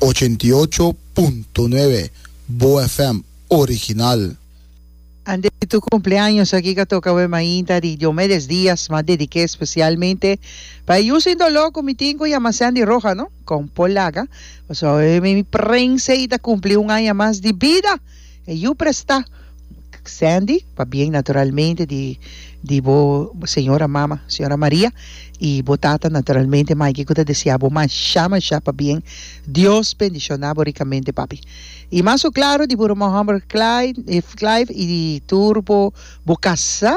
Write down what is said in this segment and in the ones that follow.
Ochenta i ocho punto nuebe Boa FM original. Ante tur cumpleaños aki ka toca awe mainta di Diomedes Diaz ma dedique specialmente pa e yusin dolor cu mi tin cu yama Sandy Roja no con Paul Laga pasobra awe mi prensa y ta cumpli un aña mas di bida. E yu presta Sandy pa bien naturalmente di di bo señora mama señora Maria y bo tata naturalmente Mikey cu ta desea bo masha masha pa bien Dios bendiciona bo ricamente papi y mas su claro di bo ruman homber Clyde Clive y di tur bo bo casa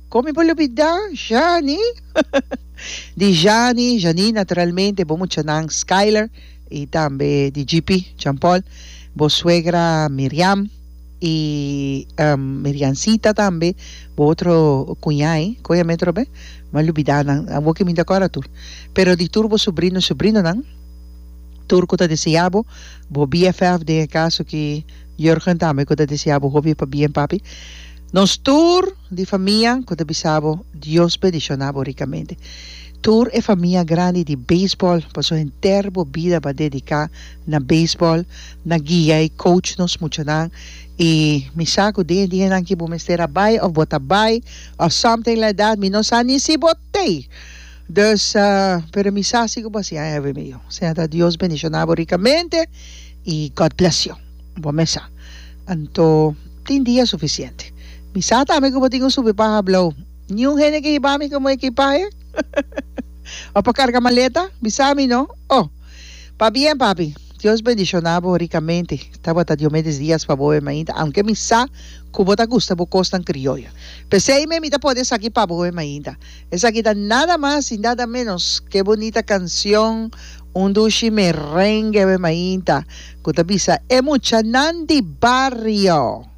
con mi por olbida Jani di Jani Jani naturalmente bo muchanan Skyler y tambe di GP Jean Paul, bo suegra Miriam y Miriancita tambe, bo otro cuñai, coja metro be? M'a lubida nan, awor ki mi ta cora tur, pero di tur bo subrino, subrinonan, tur cu ta desea bo, bo BFF den e caso ki Jurgen tambe cu ta desea bo hopi pa bien papi, nos tur di famia cu ta bisa bo Dios bendiciona bo ricamente. Tur e famia grandi di beisbòl paso henter bo bida bo a dediká na beisbòl, na guia i coach nos muchanan i mi sa ku den e dianan ke bo mester a bai òf bo ta bai òf something like that mi no sa ni si bo tei dus pero mi sa si ku bo a siña hevi mi yu siña ta Dios bendishoná bo rikamente i God bless you bo mesa anto tin dia sufisiente mi sa tambe ku bo tin un super paha hablou. Niun hende ke hiba mi komo ekipahe o pa karga maleta bisa mi no oh pa bien papi Dios bendishona bo rikamente tabata Diomedes Diaz pa boe mainta aunke mi sa ku bo ta gusta bo kosnan krioyo p'esei mi mi ta pone esaki pa boe mainta esaki ta nada mas i nada menos ke bunita kansion un dushi merengue boe mainta ku ta bisa e muchanan di bario.